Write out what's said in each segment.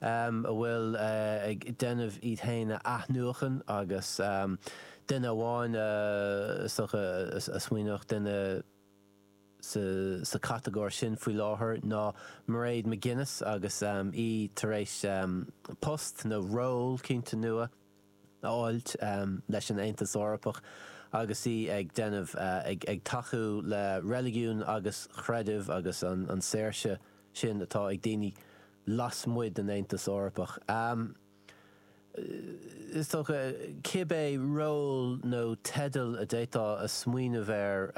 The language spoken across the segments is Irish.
um atá ag déanamh iad féin a athnuachan agus um duine amháin a is dócha a smaoineodh duine sa sa chatagóir sin faoi láthair ná Mairéad McGuinness agus um í tar éis um post nó ról iontach nua fháilt leis an Aontas Eorpach agus í ag déanamh, ag tacú le reiligiún agus creideamh agus an saoirse sin atá ag daoine lasmuigh den Aontas Eorpach. Is dócha, cibé ról nó teideal a d'fhéadfá a smaoineamh air,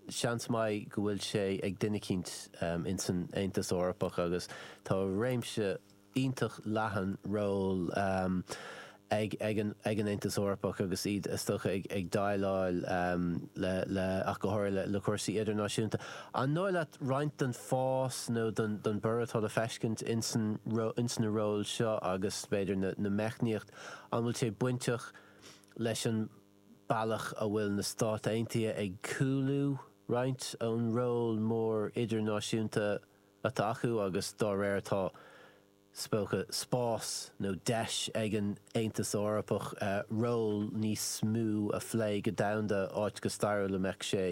seans maith go bhfuil sé ag duine eicínt in san Aontas Eorpach agus tá réimse iontach leathan ról ag an Aontas Eorpach agus iad, is dócha, ag déileáil le, ach go háirithe, le cúrsaí idirnáisiúnta. An dóigh leat roinnt den fás nó den bhorradh atá le feiscint ins na róil seo agus, b'fhéidir, na meicníochtaí, an bhfuil sé bainteach leis an bealach a bhfuil na Stáit Aontaithe ag cúlú roinnt ón ról mór idirnáisiúnta a atá acu agus dá réir tá is dócha spás nó deis ag an Aontas Eorpach ról níos mó a phlé go domhanda áit go stairiúil a mbeadh sé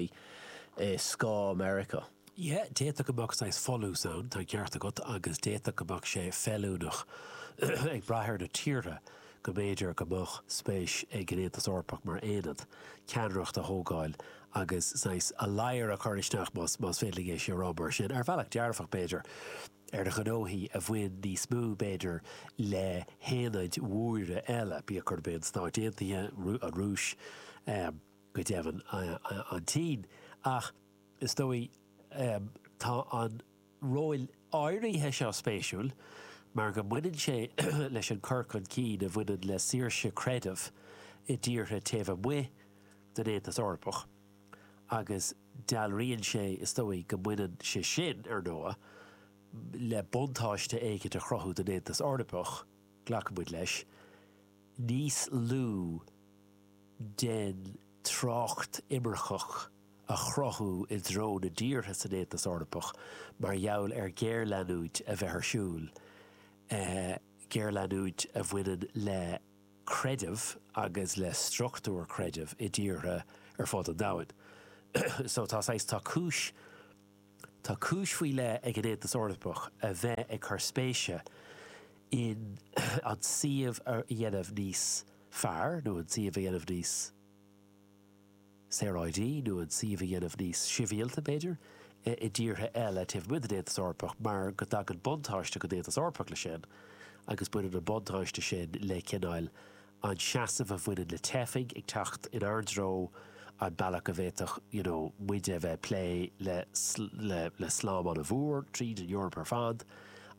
i scáth Meiriceá. Yeah, d'fhéadfadh go mbeadh saghas folús ann, tá an ceart agat, agus d'fhéadfadh go mbeadh sé feiliúnach ag brath ar na tíortha go mb'fhéidir go mbeadh spéis ag an Aontas Eorpach mar aonad ceannaireacht a thógáil agus saghas ladhair a chur isteach, más féidir linn é a rá mar sin, ar bhealach dearfach, b'fhéidir, ar ghnóthaí a bhain níos mó, b'fhéidir, le haonaid mhóra eile, bíodh gurb é na Stáit Aontaithe, an Rúis, go deimhin, an tSín. Ach is dóigh, tá an. róil áirithe seo spéisiúil mar go mbaineann sé leis an cur chun cinn a bhaineann le saoirse creidimh i dtíortha taobh amuigh den Aontas Eorpach agus dealraíonn sé, is dóigh, go mbaineann sé sin, ar ndóigh, le buntáiste éicint a chruthú don Aontas Eorpach, glacann muid leis, níos lú den trácht imirceach. a chruthú i dtreo na dtíortha san Aontas Eorpach mar gheall ar ghéarleanúint a bheith ar siúl, géarleanúint a bhaineann le creideamh agus le struchtúir chreidimh i dtíortha ar fud an domhain. So tá saghas, tá cúis, tá cúis faoi leith ag an Aontas Eorpach a bheith ag cur spéise in an suíomh a dhéanamh níos fearr nó an suíomh a dhéanamh níos, saoráidí nó an suíomh a dhéanamh níos sibhialta, b'fhéidir, i dtíortha eile taobh amuigh den Aontas Eorpach mar go dtagann buntáiste don Aontas Eorpach leis sin agus baineann an buntáiste sin le, cineál, an seasamh a bhaineann le teifigh ag teacht inár dtreo, an bealach a bhféadfadh, you know, muide a bheith ag plé le, le, le slám an-mhór tríd an Eoraip ar fad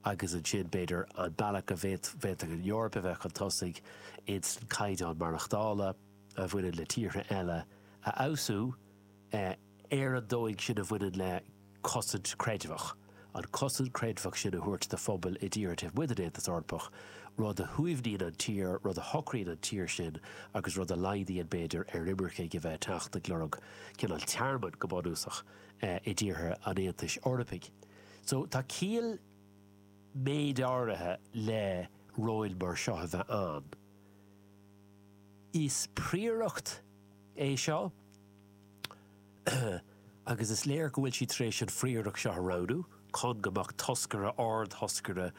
agus ansin, b'fhéidir, an bealach a bhféadfadh an Eoraip a bheith chun tosaigh insan caighdeán maireachtála. a bhaineann le tíortha eile a fheabhsú ar an dóigh sin a bhaineann le cosaint creidmheach, an cosaint creidmheach sin a thabhairt do phobail i dtíortha taobh amuigh den Aontas Eorpach, rud a shuaimhníonn an tír, rud a shocraíonn an tír sin agus rud a laghdaíonn, b'fhéidir, ar imircigh a bheith ag teacht ag lorg cineál tearmainn, go bunúsach, i dtíortha an Aontais Eorpaigh. So tá ciall méid áirithe le róil mar seo a bheith ann. Is príoracht é seo agus is léir go bhfuil siad tar éis an phríoracht seo a roghnú chun go mbeadh toscaire, ard-thoscaire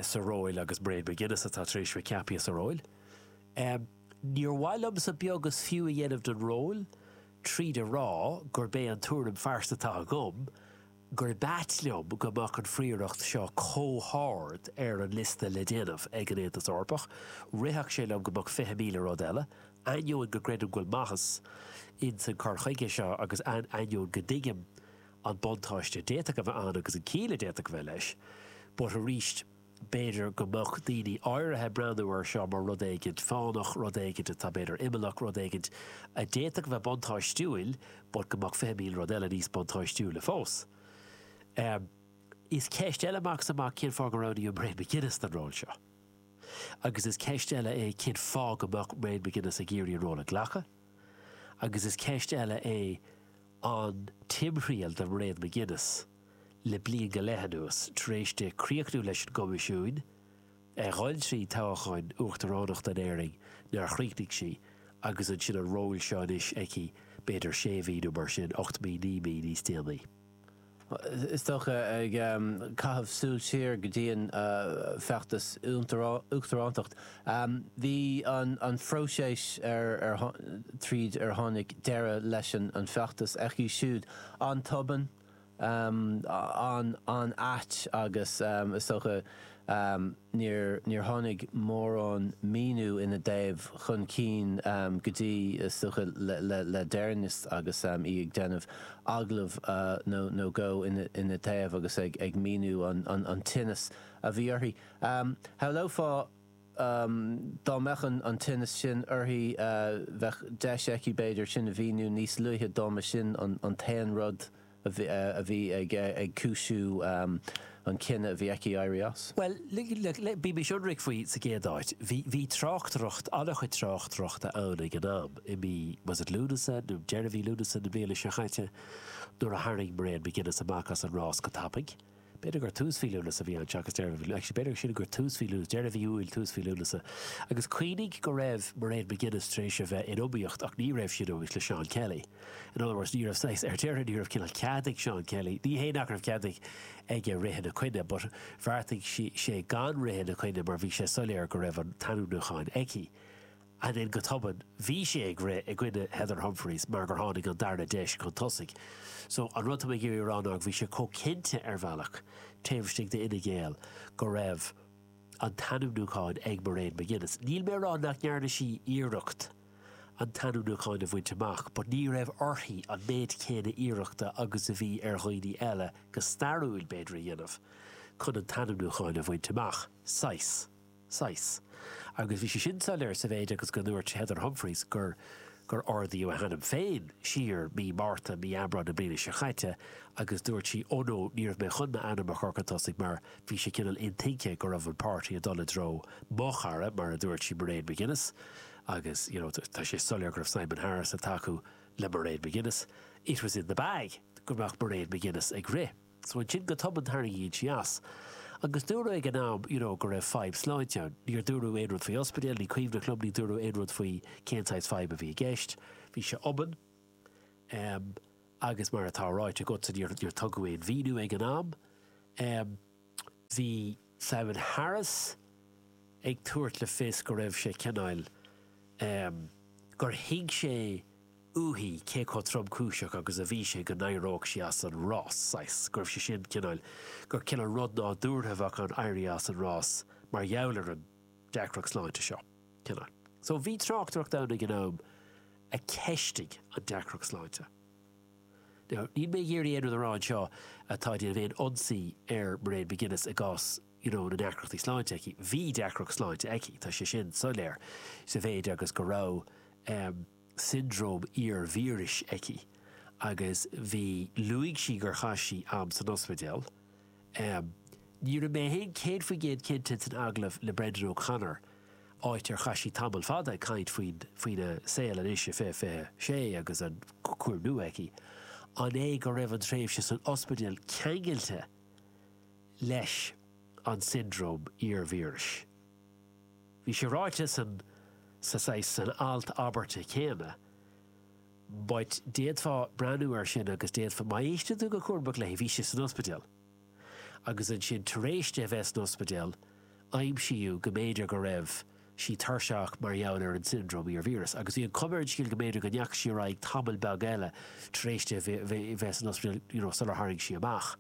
sa ról agus Mairead McGuinness atá tar éis bheith ceaptha sa ról. Níor mhaith liomsa beag is fiú a dhéanamh den ról tríd a rá gurb é an tuairim phearsanta atá agam gurb ait liom go mbeadh an phríoracht seo comh hard ar an liosta le déanamh ag an Aontas Eorpach. Rithfeadh sé liom go mbeadh fiche míle rud eile, ainneoin go gcreidim go bhfuil maitheas ins an cur chuige seo agus ainneoin go dtuigim an buntáiste a d'fhéadfadh a bheith ann agus an chiall a d'fhéadfadh a bheith leis. But arís. B'fhéidir go mbeadh daoine áirithe ag breathnú air seo mar rud éigin fánach, rud éigin atá b'fhéidir imeallach, rud éigin a d'fhéadfadh a bheith buntáistiúil but go mbeadh fiche míle rud eile níos buntáistiúla fós. Is ceist eile amach is amach cén fáth go roghnaíodh Mairead McGuinness don ról seo. Agus is ceist eile é cén fáth go mbeadh Mairead McGuinness ag iarraidh an ról a ghlacadh. Agus is ceist eile é an timthriall do Mairead McGuinness. le bliain go leith anuas tar éis di críochnú leis an gCoimisiún, ag dul trí toghchán uachtaránachta in Éirinn nár chríochnaigh sí, agus ansin an ról seo anois aici b'fhéidir sé mhí nó mar sin, ocht mí, naoi mí níos déanaí. Is dócha, ag caitheamh súil siar go dtí an feachtas uachtaránacht, bhí an phróiseas tríd ar tháinig deireadh leis an feachtas aici siúd an-tobann, an-ait agus is dócha níor tháinig mórán míniú ina dtaobh chun cinn go dtí is dócha le deireannas agus í ag déanamh agallamh nó dhó ina dtaobh agus ag míniú an tinneas a bhí uirthi. Shamhlófá Dá mbeadh an tinneas sin uirthi, bheadh deis aici, b'fhéidir, sin a mhíniú níos luaithe dá mba sin an t-aon rud a bhí ag cúisiú an cinneadh a bhí aici éirí as. Bhuel, bímis ionraic faoi sa gcéad áit, bhí tráchtaireacht, an-chuid tráchtaireachta ann ag an am, i mí, was it Lúnasa, nó deireadh mhí Lúnasa na bliana seo caite, nuair a tharraing Mairead McGuinness amach as an rás go tapaidh. B'fhéidir gur tús mhí Lúnasa a bhí ann, seachas deireadh mhí, actually b'fhéidir siúd gur tús mhí Lúnasa, deireadh mhí Iúil, tús mhí Lúnasa. Agus cuimhnigh go raibh Mairead McGuinness tar éis a bheith in iomaíocht ach ní raibh sí in iomaíocht le Seán Kelly. In other words, ní raibh saghas, ar deireadh ní raibh cineál cead ag Seán Kelly, ní hé nach raibh cead ag aige rith ina coinne but bheartaigh sé gan rith ina coinne mar bhí sé soiléir go raibh an t-ainmniúchán aici. Ansin go tobann bhí sé ag rith i gcoinne Heather Humphreys mar gur tháinig an darna deis chun tosaigh. So an rud atá mé ag iarraidh a rá ná go bhí sé chomh cinnte ar bhealach taobh istigh d'Fhine Gael go raibh an t-ainmniúchán ag Mairead McGuinness. Níl mé a rá nach ndearna sí iarracht an t-ainmniúchán a bhaint amach but ní raibh uirthi an méid céanna iarrachta agus a bhí ar dhaoine eile, go stairiúil b'fhéidir, a dhéanamh chun an t-ainmniúchán a bhaint amach, saghas. saghas. Agus bhí sé sin soiléir sa mhéid agus go ndúirt Heather Humphreys gur gur ardaíodh a hainm féin siar mí Márta, mí Aibreáin na bliana seo caite agus dúirt sí oh no, ní raibh mé chun m'ainm a chur chun tosaigh mar bhí sé cineál intuigthe go raibh an páirtí ag dul i dtreo mo chara, mar a dúirt sí, Mairead McGuinness agus you know tá sé soiléir go raibh Simon Harris ag tacú le Mairead McGuinness. It was in the bag go mbeadh Mairead McGuinness ag rith. So ansin go tobann tarraingíonn sí as. Agus dúradh ag an am, you know, go raibh fadhb sláinte ann. Níor dúradh aon rud faoi ospidéal, ní cuimhin liom, ní dúradh aon rud faoi cén saghas fadhb a bhí i gceist. Bhí sé tobann. Em, agus mar atá ráite agatsa, níor, níor tugadh aon mhíniú ag an am. Em, bhí. Simon Harris ag tabhairt le fios go raibh sé cineál, em, gur thuig sé uaithi cé chomh tromchúiseach agus a bhí sé go n-éireodh sí as an rás, saghas, go raibh sé sin cineál, gur cineál rud nádúrtha a bheadh ann éirí as an rás mar gheall ar an deacracht sláinte seo, cineál. So, bhí tráchtaireacht ann ag an am a cheistigh an deacracht sláinte. Now níl mé ag iarraidh aon rud a rá anseo atá ag déanamh aon ionsaí ar Mairead McGuinness i gcás you know na ndeacrachtaí sláinte aici. Bhí deacracht sláinte aici, tá sé sin soiléir, sa mhéid agus go raibh em siondróm iar-víris aici agus bhí luaigh sí gur chaith sí am san ospidéal, Ní raibh mé féin céad faoin gcéad cinnte san agallamh le Brendan O'Connor, áit ar chaith sí tamall fada ag caint faoina saol anois i fiche 26 agus an cúram nua aici, an é go raibh an tréimhse san ospidéal ceangailte leis an siondróm iar-víris. Bhí sé ráite san, sa, saghas, san abairt chéanna, But d'fhéadfá breathnú air sin agus d'fhéadfá, má éisteann tú go cúramach leis, bhí sé san ospidéal. Agus ansin, tar éis di a bheith san ospidéal, aimsíodh go mb'fhéidir go raibh sí tuirseach mar gheall ar an siondróm iar-víreas. Agus bhí an chuma ar an scéal go mb'fhéidir go ndeachaigh sí ar aghaidh tamall beag eile tar éis di a bheith san ospidéal you know sular tharraing sí amach.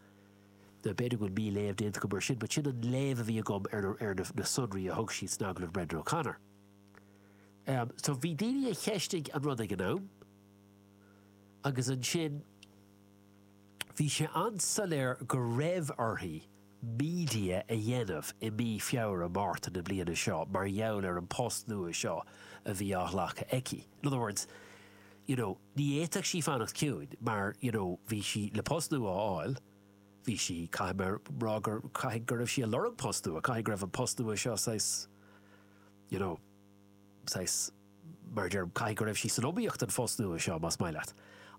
Now, b'fhéidir go bhfuil mí-léamh déanta agam air sin but sin an léamh a bhí agam ar na sonraí a thug siad san agallamh Brendan O'Connor. So bhí daoine a cheistigh an rud ag an am agus ansin bhí sé an-soiléir go raibh uirthi media a dhéanamh i mí Feabhra, Márta na bliana seo mar gheall ar an post nua seo a bhí á ghlacadh aici. In other words, you know, ní fhéadfadh sí fanacht ciúin mar, you know, bhí sí le post nua a fháil, bhí sí, caithfidh mé a rá gur, caithfidh go raibh sí ag lorg post nua, caithfidh go raibh an post nua seo saghas, you know, saghas, mar a déarfá, caithfidh go raibh sí san iomaíocht don phost nua seo, más maith leat.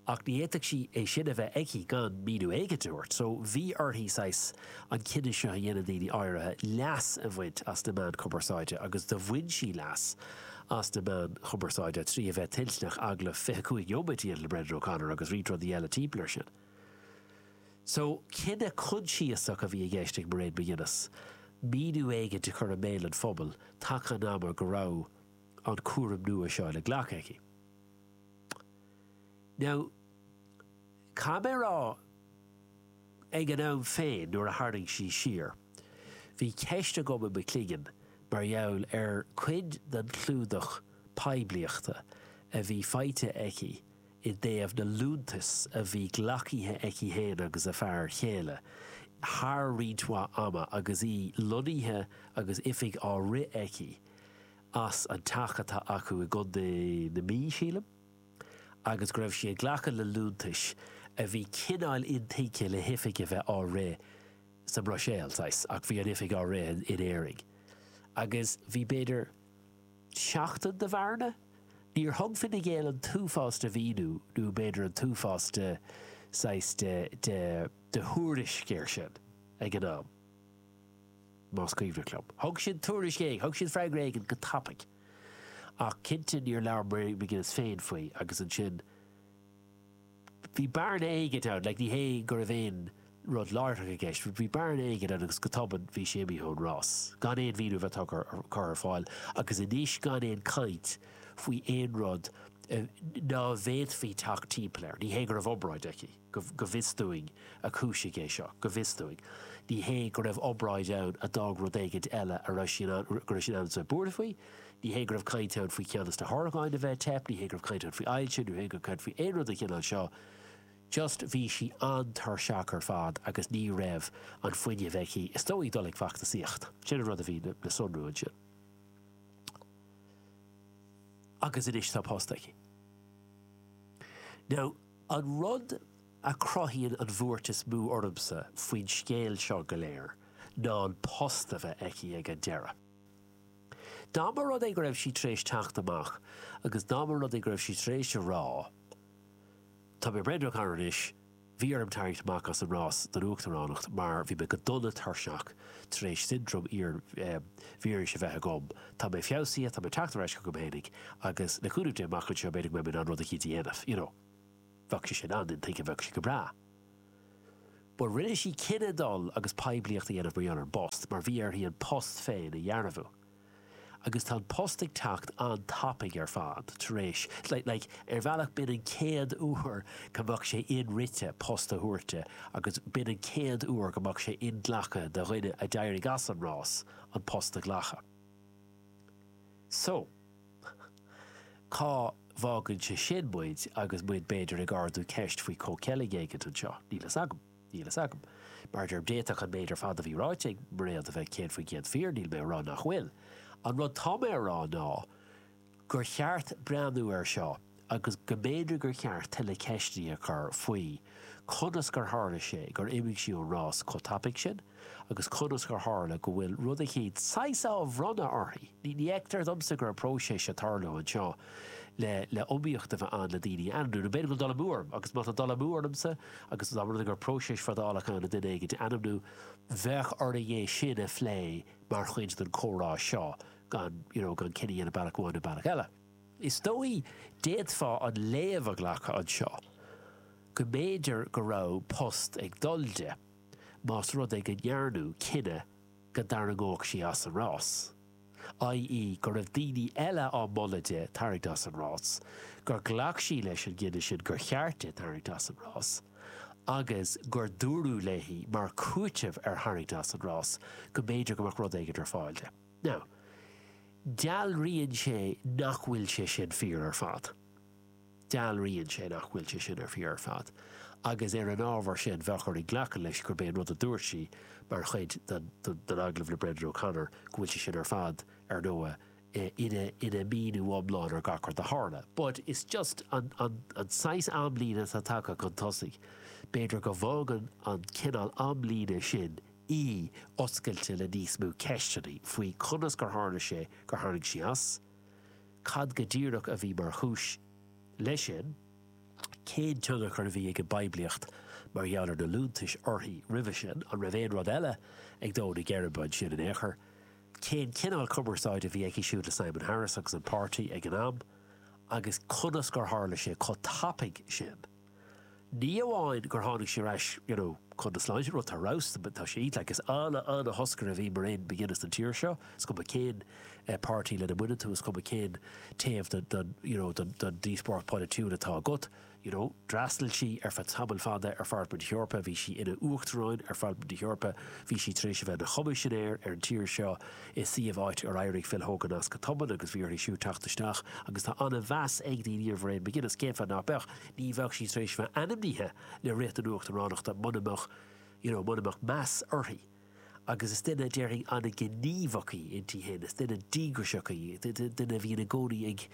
Ach ní fhéadfadh sí é sin a bheith aici gan míniú éigin a thabhairt. So, bhí uirthi, saghas, an cinneadh seo a dhéanamh, daoine áirithe, leas a bhaint as na meáin chumarsáide agus do bhain sí leas as na meáin chumarsáide trí a bheith toilteanach agallamh fiche cúig neomat a dhéanamh le Brendan O'Connor agus roinnt rudaí eile timpeall ar sin. So, cinneadh coinsiasach a bhí i gceist ag Mairead McGuinness, míniú éigin a chur i mbéal an phobail taca an ama go raibh an cúram nua seo le glacadh aici. Now, caithfidh mé a rá, ag an am féin nuair a tharraing sí siar, bhí ceist agam i mo chloigeann mar gheall ar cuid den chlúdach poiblíochta a bhí faighte aici i dtaobh na liúntas a bhí glacaithe aici féin agus a fear chéile thar roinnt mhaith ama agus í lonnaithe agus oifig á rith aici as an teach atá acu i gContae na Mí, sílim, agus go raibh sí ag glacadh le liúntais a bhí cineál intuigthe le hoifig a bheith á rith sa mBruiséil, saghas, ach bhí an oifig á rith in Éirinn. Agus bhí, b'fhéidir. tseachtain de bhearna. Níor thug Fine Gael an t-uafás de mhíniú, nó b'fhéidir an t-uafás de saghas de, de, de thuairisc air sin ag an am, más cuimhneach liom. Thug siad tuairisc éigin, thug siad freagra éigin go tapaidh, ach cinnte níor labhair Mairéad McGuinness féin faoi agus ansin, Bhí bearna éigint ann, like ní hé go raibh aon rud láithreach i gceist, but bhí bearna éigint ann agus go tobann bhí sé imithe ón rás, gan aon mhíniú a bheith tugtha ar, curtha ar fáil agus anois gan aon chaint faoi aon rud a, nach bhféadfaí teacht timpeall air. Ní hé go raibh obráid aici, go, go bhfios dúinn, a chúisigh é seo, go bhfios dúinn. Ní hé go raibh obráid ann a d'fhág rud éigint eile a raibh sí in ann, go raibh sí in ann a bheith buartha faoi. Ní hé go raibh caint ann faoi cheann dos na horgáin a bheith ag teip, ní hé go raibh caint ann faoi ailse, ní hé go raibh caint faoi aon rud den chineál seo, just bhí sí an-tuirseach ar fad agus ní raibh an fuinneamh aici, is dóigh, dul ag feachtasaíocht. Sin an rud a bhí le sonrú ansin. Agus anois tá post aici. Now, an rud a chruthaíonn an bhuairt is mó ormsa faoin scéal seo go léir ná an post a bheith aici ag an deireadh. Dá mba rud é go raibh sí tar éis teacht amach agus dá mba rud é go raibh sí tar éis a rá, Tá mé ag breathnú thart anois, bhí orm tarraingt amach as an rás don uachtaránacht mar bhí mé go dona tuirseach tar éis siondróm iar-víris a bheith agam, tá mé feabhsaithe, tá mé ag teacht ar ais chugam fhéinig agus, le cúnamh Dé, amach anseo, b'fhéidir go mbeidh mé in ann rud eicínt a dhéanamh, you know. bheadh sé sin an-intuigthe, bheadh sé go breá. Bhuel, rinne sí cinneadh dul agus poiblíocht a dhéanamh mar gheall ar an bpost, mar bhí uirthi an post féin a dhearbhú. Agus tá an post ag teacht an-tapaidh ar fad tar éis, like, ar bhealach b'in an chéad uair go mbeadh sé in-rite post a thabhairt di agus b'in an chéad uair go mbeadh sé inghlactha do dhuine a d'éirigh as an rás an post a ghlacadh. So. Cá bhfágann sé sin muid agus muid b'fhéidir ag ardú ceist faoi comhcheilg eicínt anseo? Níl fhios agam. Níl fhios agam. Mar a deirim, d'fhéadfadh an méid ar fad a bhí ráite ag Mairéad a bheith céad faoin gcéad fíor, níl mé a rá nach bhfuil. An rud tá mé a rá ná gur cheart breathnú air seo, agus go mb'fhéidir gur cheart tuilleadh ceisteanna a chur faoi conas gur tharla sé gur imigh sí ón rás chomh tapaidh sin agus conas gur tharla go bhfuil rud éigin saghas á bhronnadh uirthi. Ní fheictear domsa go raibh próiseas ag tarlú anseo le le iomaíocht a bheith ann le daoine a ainmniú. Nó b'fhéidir go bhfuil dul amú orm, agus má tá dul amú ormsa agus dá mba rud é go raibh próiseas fadálach ann le duine éigin a ainmniú, bheadh orainn é sin a phlé mar chuid den chomhrá seo gan, you know, gan cinneadh a dhéanamh bealach amháin nó bealach eile. Is dóigh, d'fhéadfá an léamh a ghlacadh anseo go mb'fhéidir go raibh post ag dul di, más rud é go ndearnadh cinneadh go dtarraingeodh sí as an rás, i.e. go raibh daoine eile á moladh di tarraingt as an rás, gur ghlac sí leis an gcinneadh sin gur cheart di tarraingt as an rás, agus gur dúradh léi mar chúiteamh ar tharraingt as an rás go mb'fhéidir go mbeadh rud éigin ar fáil di. Now, dealraíonn sé nach bhfuil sé sin fíor ar fad. Dealraíonn sé nach bhfuil sé sin ar fíor ar fad, agus ar an ábhar sin, bheadh orainn glacadh leis gurb é an rud a dúirt sí mar chuid den agallamh le Brendan O'Connor, go bhfuil sé sin ar fad, ar ndóigh, ina míniú iomlán ar gach rud a tharla. But is just an saghas amlíne atá tagtha chun tosaigh. B'fhéidir go bhfágann an cineál amlíne sin í oscailte le níos mó ceisteanna faoi conas gur tharla sé gur tharraing sí as, cad go díreach a bhí mar chúis leis sin, cén tionchar a bhí ag an bpoiblíocht mar gheall ar na liúntais uirthi roimhe sin, an raibh aon rud eile ag dó na geirbe ansin in aon chor, cén cineál cumarsáide a bhí aici siúd le Simon Harris agus an páirtí ag an am agus conas gur tharla sé chomh tapaidh sin. Ní amháin gur tháinig sí ar ais you know chun na sláinte, rud atá roghsta but tá sí like is ana ana thoscaire a bhí Mairéad McGuinness don tír seo, is cuma cén eh páirtí lena mbaineann tú, is cuma cén taobh den den you know den den díospóireacht pholaitiúil atá agat, you know d'fhreastail sí ar feadh tamaill fada ar Pharlaimint na hEorpa, bhí sí ina Uachtaráin ar Pharlaimint na hEorpa, bhí sí tar éis a bheith ina Choimisinéir ar an tír seo, i suíomh áit ar éirigh Phil Hogan as go tobann agus bhí uirthi siúd teacht isteach agus tá an-mheas ag daoine ar Mhairéad McGuinness. Cén fáth nach mbeadh? Ní bheadh sí tar éis bheith ainmnithe le rith don uachtaránacht muna mbeadh, you know, muna mbeadh meas uirthi. Agus is duine, déarfainn, an-ghníomhach í inti féin, is duine díograiseach í, duine a bhíonn i gcónaí ag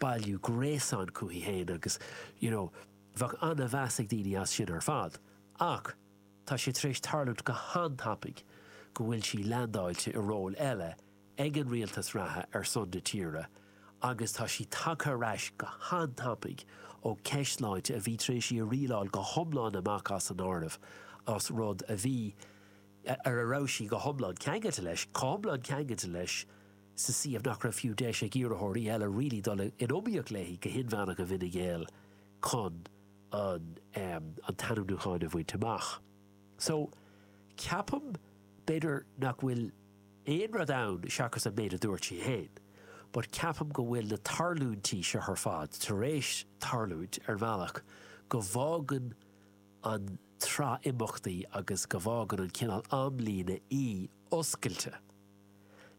bailiú gréasáin chuici féin agus, you know, bheadh an-mheas ag daoine as sin ar fad. Ach. tá sé tar éis tarlúint go han-tapaidh go bhfuil sí leandáilte i ról eile ag an rialtas reatha ar son na tíre agus tá sí tagtha ar ais go han-tapaidh ó cheist sláinte a bhí tar éis í a rialáil go hiomlán amach as an áireamh as rud a bhí ar a raibh sí go hiomlán ceangailte leis chomh hiomlán ceangailte leis sa suíomh nach raibh fiú deis ag iarrthóirí eile really dul in iomaíocht léi go hinmheánach i bhFine Gael chun an an t-ainmniúchán a bhaint amach. So, ceapaim, b'fhéidir nach bhfuil aon rud ann seachas an méid a dúirt sí féin, but ceapaim go bhfuil na tarlúintí seo ar fad tar éis tarlúint ar bhealach go bhfágann an tsraith imeachtaí agus go bhfágann an cineál amlíne í oscailte.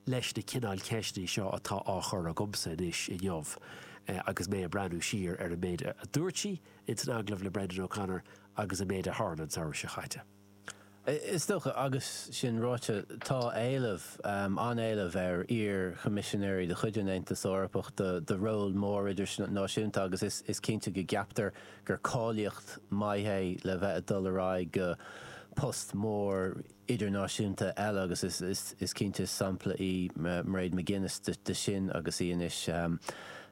leis na cineáil ceisteanna seo atá á gcur agamsa anois inniu agus mé ag breathnú siar ar an méid a dúirt sí ins an agallamh le Brendan O'Connor agus an méid a tharla an samhradh seo chaite. Is dócha, agus sin ráite, tá éileamh, an-éileamh, ar iar-Choimisinéirí de chuid an Aontais Eorpaigh do róil mór idirnáisiúnta agus is cinnte go gceaptar gur cáilíocht maith é le bheith ag dul ar aghaidh go post mór idirnáisiúnta eile agus is cinnte sampla í Mairead McGuinness de sin agus í anois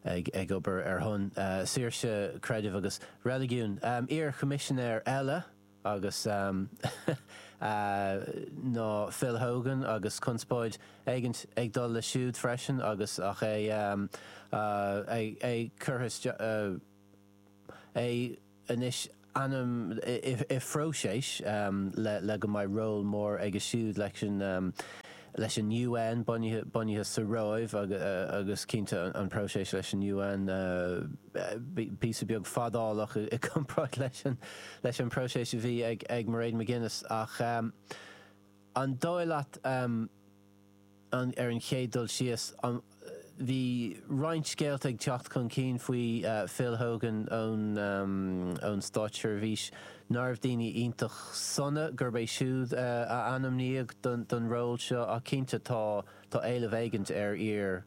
ag obair ar son saoirse creidimh agus reiligiún. Iar choimisinéir eile agus ná Phil Hogan agus conspóid éigint ag dul leis siúd freisin agus ach é curtha isteach. anois ainm i bpróiseas le go mbeidh ról mór aige siúd leis an leis an UN bunaithe sa Róimh agus cinnte an próiseas leis an UN píosa beag fadálach i gcomparáid leis an bpróiseas a bhí ag Mairead McGuinness ach an dóigh leat Ar an chéad dul síos, bhí roinnt scéalta ag teacht chun cinn faoi Phil Hogan ón státseirbhís, ná raibh daoine iontach sona, gurb é siúd a ainmníodh don ról seo, ach cinnte tá tá éileamh éigint ar iar.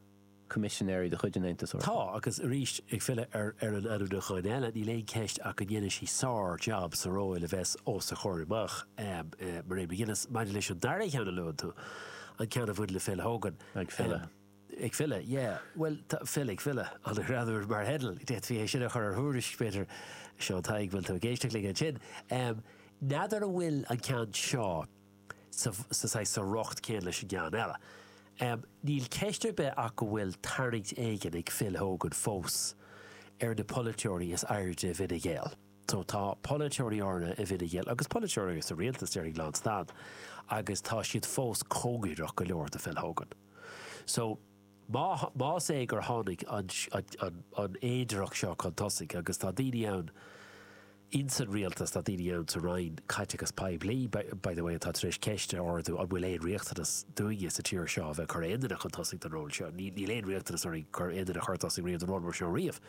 coimisinéirí de chuid an Aontais Eorpaigh. Tá, agus arís, ag filleadh ar ar an ainmniúchán eile, níl aon cheist ach go ndéanfaidh sí sár-jab sa ról a bheas os a comhair amach. Mairead McGuinness, maidir leis an dara cheann a luann tú, an ceann a bhain le Phil Hogan, Ag filleadh. Ag filleadh, yeah. Bhuel, tá Phil ag filleadh. An-ghreannmhar mar theideal. D'fhéadfaí é sin a chur ar thuairisc, b'fhéidir. Seán Tadhg, bhfuil tú ag éisteacht linn ansin? N'fheadar an bhfuil an ceann seo. sa riocht céanna leis an gceann eile. Níl ceist ar bith ach go bhfuil tarraingt éigin ag Phil Hogan fós ar na polaiteoirí is airde i bhFine Gael. Tá polaiteoirí áirithe i bhFine Gael agus polaiteoirí sa rialtas, déarfainn, lán stad agus tá siad fós cóngareach go leor do Phil Hogan. Más é gur tháinig an fhéidearthacht seo chun tosaigh, agus tá daoine ann ins an rialtas, tá daoine ann sa Roinn Caiteachas Poiblí, by the way, atá tar éis ceist a ardú, an bhfuil aon riachtanas dúinne sa tír seo a bheith ag cur aon duine chun tosaigh don ról seo? Níl aon riachtanas orainn aon duine a chur chun tosaigh riamh don ról mar seo riamh.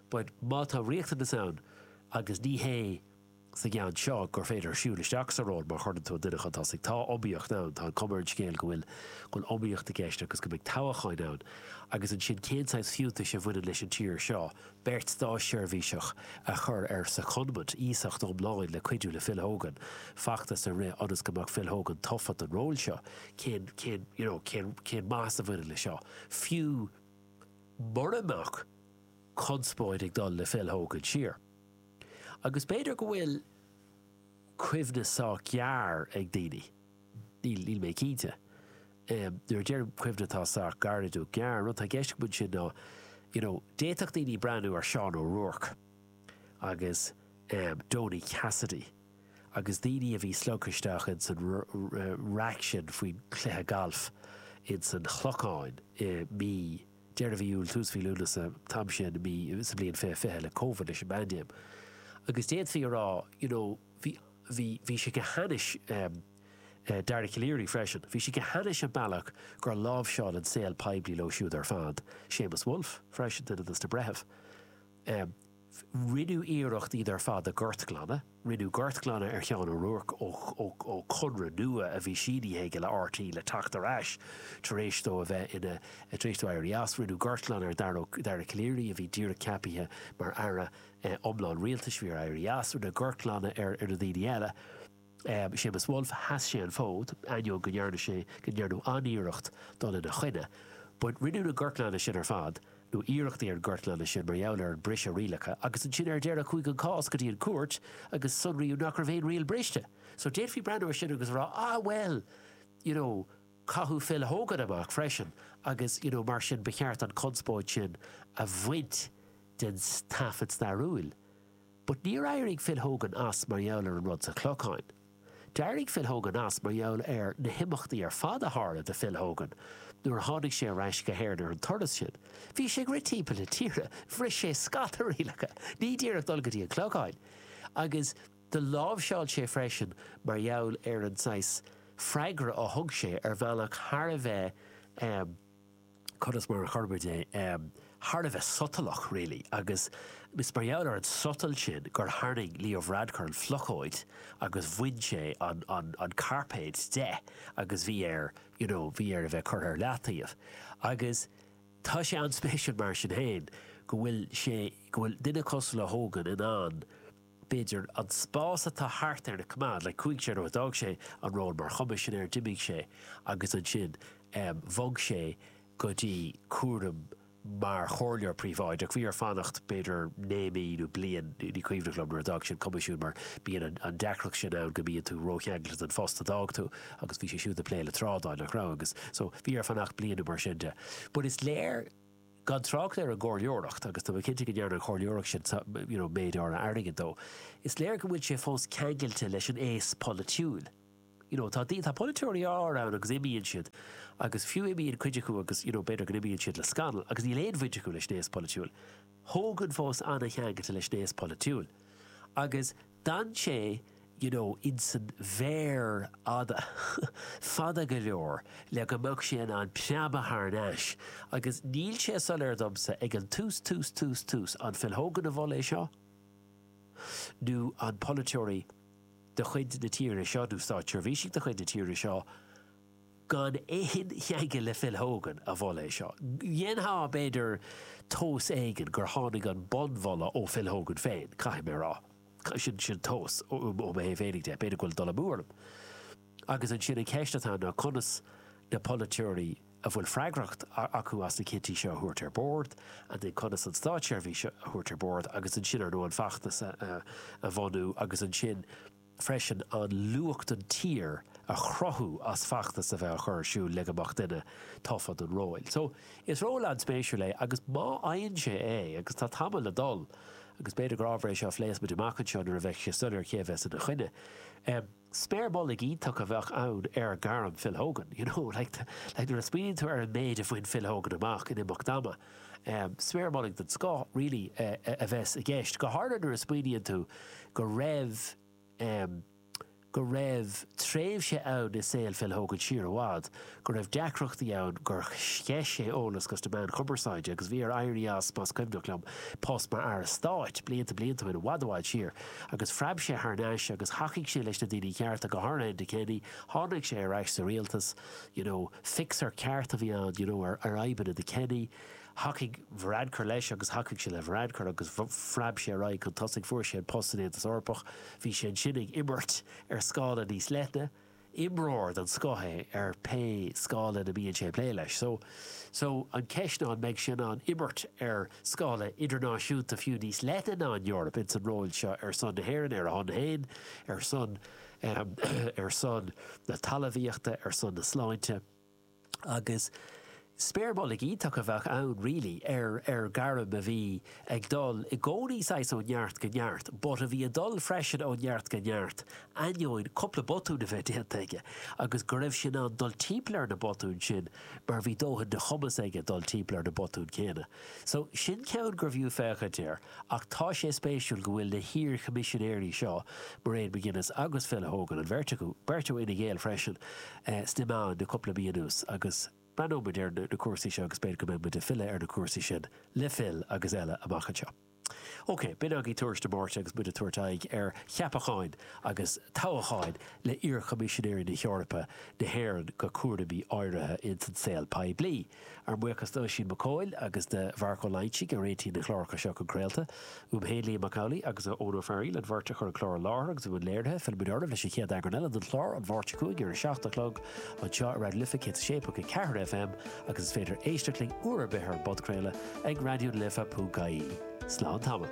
But má tá riachtanais ann, agus ní hé. sa gceann seo gur féidir siúl isteach sa ról má chuireann tú an duine chun tosaigh. Tá iomaíocht ann, tá an cuma ar an scéal go bhfuil go bhfuil iomaíocht i gceist agus go mbeidh toghchán ann agus ansin cén saghas fiúntais a bhaineann leis an tír seo beirt státseirbhíseach a chur ar secondment, iasacht iomlán le cuidiú le Phil Hogan feachtas a rith ionas go mbeadh Phil Hogan tofa don ról seo. Cén, cén, you know, cén, cén maitheas a bhaineann leis seo? Fiú mura mbeadh conspóid ag dul le Phil Hogan siar. Agus b'fhéidir go bhfuil cuimhne sách gearr ag daoine, níl, níl mé cinnte. Nuair a deirim cuimhne atá sách gairid nó gearr, an rud atá i gceist agam ansin ná, you know, d'fhéadfadh daoine breathnú ar Seán O'Rourke agus em Donie Cassidy agus daoine a bhí slogtha isteach ins an raic sin faoin chluiche gailf ins an Chlochán i mí deireadh mhí Iúil, tús mhí Lúnasa, an t-am sin i mí, sa bhliain fiche fiche, le Covid, leis an bpaindéim. Agus d'fhéadfaí a rá, you know, bhí, bhí, bhí sé go hainnis, em, eh, Dara Calleary freisin, bhí sé go hainnis an bealach gur láimhseáil an saol poiblí leo siúd ar fad, Seamus Woulfe freisin, duine de sna breithimh, em, Rinneadh iarracht iad ar fad a ghortghlanadh. Rinneadh gortghlanadh ar Sheán O'Rourke ó Chonradh Nua a bhí sínithe aige le RTÉ le teacht ar ais tar éis dó a bheith ina, tar éis dó éirí as. Rinneadh gortghlanadh ar Dara Calleary a bhí díreach ceapaithe mar Aire iomlán Rialtais bhí air éirí as. Rinneadh gortghlanadh ar na daoine eile. Séamus Woulfe, sheas sé an fód, ainneoin go ndearna sé go ndearnadh an-iarracht dul ina choinne. But rinneadh na gortghlanadh sin ar fad, nó iarrachtaí ar an gortghlanadh sin, mar gheall ar an briseadh rialacha, agus ansin ar deireadh chuaigh an cás go dtí an cúirt agus sonraíodh nach raibh aon riail briste. So d'fhéadfaí breathnú ar sin agus a rá, ah well, you know, caitheadh Phil Hogan amach freisin agus, you know, mar sin ba cheart an chonspóid sin a bhaint den taifead stairiúil. But níor éirigh Phil Hogan as mar gheall ar an rud sa Chlochán. D'éirigh Phil Hogan as mar gheall ar na himeachtaí ar fad a tharla do Phil Hogan nuair a tháinig sé ar ais go hÉirinn ar an turas sin. Bhí sé ag rith timpeall na tíre, bhris sé scata rialacha, ní díreach dul go dtí an Clochán, agus do láimhseáil sé é freisin mar gheall ar an saghas freagra a thug sé ar bhealach thar a bheith, eh, conas mar a chuirfidh mé é, thar a bheith sotalach, really, agus is mar gheall ar an sotal sin gur tharraing Leo Varadkar an phlocóid agus bhain sé an cairpéad de agus bhí air, you know, bhí air a bheith curtha ar leataobh. Agus tá sé an-spéisiúil mar sin féin go bhfuil sé, go bhfuil duine cosúil le Hogan in ann, b'fhéidir, an spás atá thart air a choimeád le cúig é, ó d'fhág sé an ról mar choimisinéir. D'imigh sé agus ansin bhog sé go dtí cúram mar chomhairleoir príobháideach. Bhí air fanacht b'fhéidir naoi mí nó bliain, ní cuimhin liom, nuair a d'fhág sé an coimisiún mar bíonn an deacracht sin ann go mbíonn tú rócheangailte den phost a d'fhág tú agus bhí sé siúd ag plé le trádáil, nach raibh? Agus so bhí air fanacht bliain nó mar sin de. But is léir. gan trácht ar an gcomhairleoireacht, agus tá mé cinnte go ndearna an chomhairleoireacht sin you know méid áirithe airgid dó, is léir go bhfuil sé fós ceangailte leis an aos polaitiúil. You know tá tá polaiteoirí áirithe ann agus imíonn siad agus fiú imíonn cuid acu agus you know b'fhéidir go n-imíonn siad le scannal agus níl aon bhaint acu leis an aos polaitiúil. Hogan fós an-cheangailte leis an aos polaitiúil agus D'fhan sé, you know, insan bhféar fada, fada go leor le go mbeadh sé in ann preabadh thar n-ais agus níl sé soiléir domsa ag an tús, tús, tús, tús, an Phil Hogan a mhol é seo nó an polaiteoirí de chuid na tíre seo nó státseirbhísigh de chuid na tíre seo, Gan aon cheangal le Phil Hogan a mhol é seo. Dhéanfá, b'fhéidir, tomhas éigin gur tháinig an bunmholadh ó Phil Hogan féin, caithfidh mé a rá. Sin tomhas, ó mo thaobh féinig de. B'fhéidir go bhfuil dul amú orm. Agus ansin, an cheist atá ann ná conas na polaiteoirí a bhfuil freagracht acu as na cinntí seo a thabhairt ar bord, and then conas an státseirbhís seo a thabhairt ar bord, agus ansin, ar ndóigh, an feachtas a bhunú, agus ansin, freisin an luach don tír a chruthú as feachtas a bheith á chur ar siúl le go mbeadh duine tofa don ról. So, is ról an-spéisiúil é agus má fhaigheann sé é, agus tá tamall le dul agus b'fhéidir gur ábhar é seo a phléifeas muid amach anseo nuair a bheidh sé soiléir cé a bheas ina choinne, em, sméar mullaigh iontach a bheadh ann ar ghairm Phil Hogan, you know, like, like nuair a smaoiníonn tú ar an méid a bhain Phil Hogan amach in imeacht ama. Sméar mullaigh den scoth, really, a bheadh i gceist, go háirithe nuair a smaoiníonn tú go raibh go raibh tréimhse ann i saol Phil Hogan siar i bhfad go raibh deacrachtaí ann gur sceith sé eolas go dtí na meáin chumarsáide agus bhí air éirí as, más cuimhneach liom, post mar Aire Stáit, blianta blianta ó shin, i bhfad i bhfad siar. Agus phreab sé thar n-ais agus thacaigh sé leis na daoine cearta, go háirithe Enda Kenny. Tháinig sé ar ais sa rialtas. you know, fixer ceart a bhí ann, you know, ar fhadhbanna Enda Kenny. Thacaigh Varadkar leis agus thacaigh sé le Varadkar agus phreab sé ar aghaidh chun tosaigh. Fuair sé an post san Aontas Eorpach. Bhí sé ansin ag imirt ar scála níos leithne. Imreoir den scoth é ar pé scála ina mbíonn sé ag plé leis. So, so, an ceist ná an mbeidh sé in ann imirt ar scála idirnáisiúnta fiú níos leithne ná an Eoraip ins an ról seo ar son na hÉireann, ar a shon féin, ar son ar son na talamhaíochta, ar son na sláinte agus sméar mullaigh iontach a bheadh ann really ar ar gairm a bhí ag dul i gcónaí saghas ó neart go neart but a bhí a dul freisin ó neart go neart ainneoin cúpla botún a bheith déanta aige agus go raibh sé in ann dul timpeall ar na botúin sin mar bhí dóthain de chumas aige dul timpeall ar na botúin céanna so sin ceann gurbh fhiú féachaint air. Ach tá sé spéisiúil go bhfuil na hiar-Choimisinéirí seo, Mairead McGuinness agus Phil Hogan, an bheirt acu, beirt ó Fhine Gael freisin, sna meáin le cúpla mí anuas. Agus breathnóidh muid ar na cúrsaí seo agus b'fhéidir go mbeidh muid ag filleadh ar na cúrsaí sin le Phil agus eile amach anseo. OK, b'in againn Tuairisc de Máirt agus muid ag tabhairt aghaidh ar cheapacháin agus toghacháin le iar-Choimisinéirí na hEorpa, na hÉireann go cúraimí áirithe ins an saol poiblí. Ár mbuíochas d'Oisín Mac Eochaill agus de Mharc Ó Loingsigh a réitigh na clárachaí seo chun craolta. Uaim féin, Liam Mac Amhlaigh agus Eoin Ó Fearaíl, an bheirt a chuir an clár i láthair agus i mbun léirithe. Fillfimidne oraibh leis an chéad eagrán eile den chlár, An Mháirt seo chugainn ar a seacht a chlog, anseo ar Raidió na Life 106.4 FM agus is féidir éisteacht linn uair ar bith ar an bpodchraoladh ag raidiolife.ie. Slán tamall.